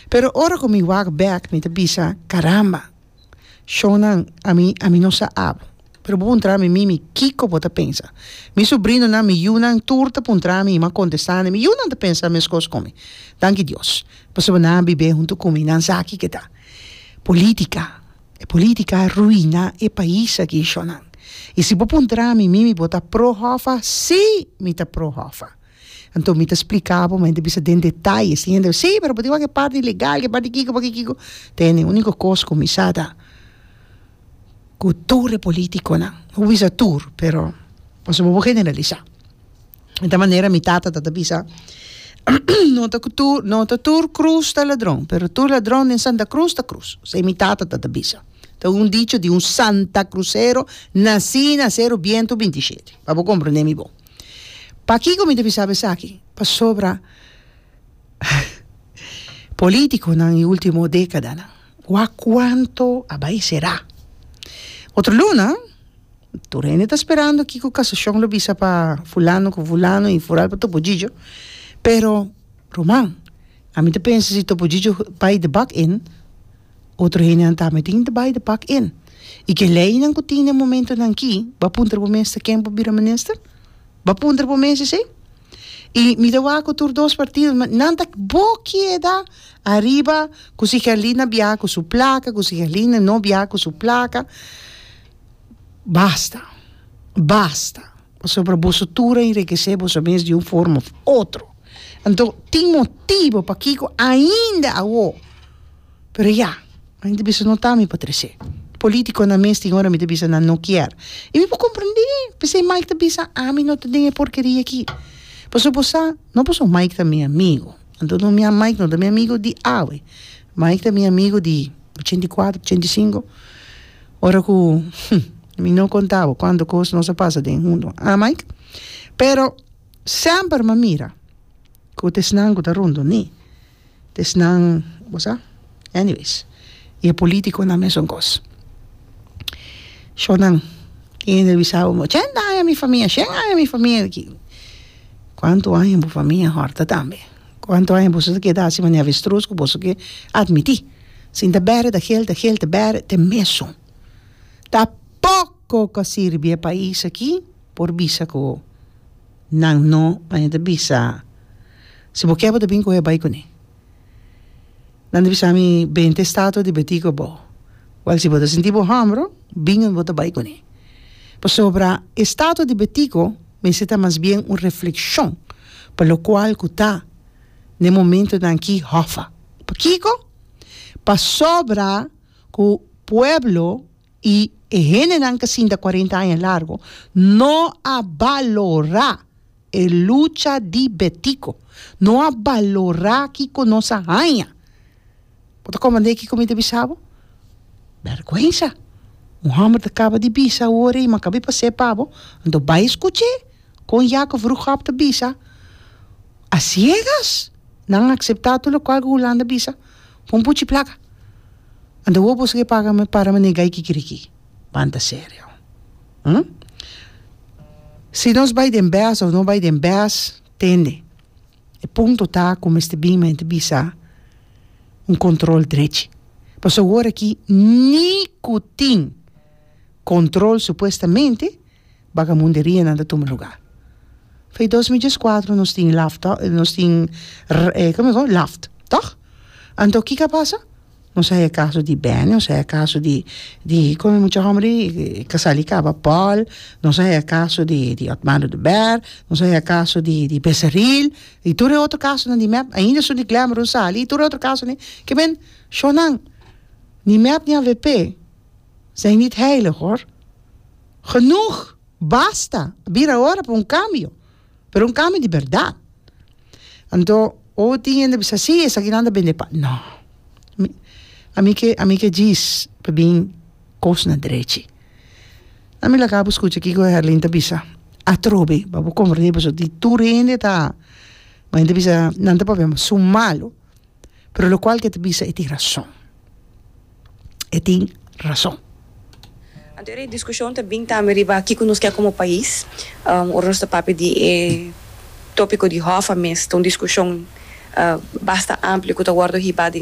Pero ora ku mi wak bèk mi ta bisa, Karamba! Shonnan, ami ami no sa abo. Pero bo puntra mi mimi, Kiko bo ta pensa? Mi subrinonan, mi yunan tur ta puntra mi i m'a kontestá mi. Mi yunan ta pensa meskos ku mi. Danki Dios pasobra nan a bib'é huntu ku mi. Nan sa aki ke ta polítika. E polítika a ruiná e pais aki, shonnan. I si bo puntra mi mimi, bo ta pro Hòfa? Sí, mi ta pro Hòfa. Anto mi ta spliká bo, mi hende bisa den detaye, tin hende si pero bo tin wak e parti ilegal, ke parti kiko, parti kiko, tene uniko kos ku mi sa ta ku tur e politikonan, no bo bisa tur pero pasobra bo generalisá, e ta manera mi tata tabata bisa no ta ku tur no ta tur krus ta ladron pero tur ladron den santa krus ta krus, esei mi tata tabata bisa, ta un dicho di un santa krusero nasí na Seru Bientu binti i shete pa bo komprendé mi bo. Pakiko mi debí sabe esaki? Pasobra polítikonan e último dékadanan, wak kuantu a bai será. Otro luna, tur hende ta sperando kiko kasashon lo bisa pa Fulano ku Fulano i foral pa Topollillo, pero ruman, ami ta pensa si Topollillo bai debak in, Otro hendenan ta metin ta bai di pak en. I ke leinan ku tin den momentunan aki, bo a puntra bo mes te ken bo bira minister? Bo a puntra bo mes esei? I mi ta wak ku tur dos partido, mi nan ta bo keda ariba ku si Herlina bia ku su plaka, ku si Herlina no bia ku su plaka. Basta! Basta! Pasobra boso tur a enrikesé boso mes di un forma òf otro. Anto tin motibu pakiko ainda awo, pero ya, mi ta bisa no ta mi patresé. Politiconan mes tin ora mi ta bisa nan no kier. I mi por comprendé, p'esei Mike ta bisa ami no ta den e porkeria aki. Pasobra bo sa, no pasobra Mike ta mi amigo, anto no mi a Mike no ta mi amigo di awe. Mike ta mi amigo di ochenta i kuater, ochenta i sinku, ora ku mi no konta bo kuantu kos nos a pasa den huntu, ah Mike? Pero semper mi a mira ku ta esnan ku ta rondoni, ta esnan, bo sa, anyways, i e politikonan mesun kos. Shornan, tin hende a bisa bo, ochenta aña mi famia, shen aña mi famia, kuantu aña bo famia a hòrta tambe? Cuanto aña boso ta keda haci manera avestruz cu boso ke admiti? Sin ta bere ta gel, ta gel ta bere te mesun. Ta poco ca sirbi e pais aki por bisa cu nan no aña ta bisa si bo ke bo ta bin cu e bai cune. Nan ta bisa mi, Ben ta estatua di Betí ku bo. Wèl, si bo ta sinti bo hòmbro, bin unda bo ta bai kuné. Pasobra estatua di Betiko mester ta mas bien un reflekshon pa lokual ku ta na e momentunan akí hòffa. Pakiko? Pasobra ku pueblo I e hendenan kasinta cuarenta aña largo no a balora e lucha di Betico, no a balora kico nos a haña. Bo ta comprende kico mi ta bisa bo? Bergwensa! Un homber ta caba di bisa awor ei, ma caba di pas'é pa bo. Anto bai scuch'é con Jacob Vroegop ta bisa, A ciegas nan a acepta tur locual cu Hulanda bisa. Pon puchi plaka. Anta wou boso ke paga me para me negai kikiriki. Banta serio. Hm. Si nos bai den bes of no bai den bes tende. E punto ta ku mester bin mente bisa un kontrol drechi. Pasobra awor aki ni ku tin kontrol supuestamente. Bagamunderianan ta tuma luga. Fei dos mi djes kuatro nos tin laft nos tin como digo laft tog? Anto kiko a pasa? Nos a haña kaso di Benny nos a haña kaso di di como e mucha homber di Casali y Caba Paul nos a haña kaso di di Otmano de Abair nos a haña kaso di di Besaril y tur e otro kasonan di mep ainda asun di Glamron sali y tur e otro kasonan kimen shownan ni mep ni avp. Zijn niet heilig, hoor. Genoeg! Basta! A bira ora pa un cambio, pero un cambio di berdad. Anto, oh, tin hende bisa sí, esaki nan ta bende pan. No. Mi, ami ke, ami ke djis pa bin kosnan drechi. Na mi laga bo skucha kiko Herlin ta bisa, Atrobe, pa bo comprende boso di tur hende ta, men ta bisa, nan ta papia, ma su malo. Pero locual ke ta bisa e tin rason. E tin rason. Anto e discusion ta bin tambe riba kico nos ke como pais. Ora nos ta papia di e topico di Hoffa mes ta un discusion basta amplio cu ta wordo hiba den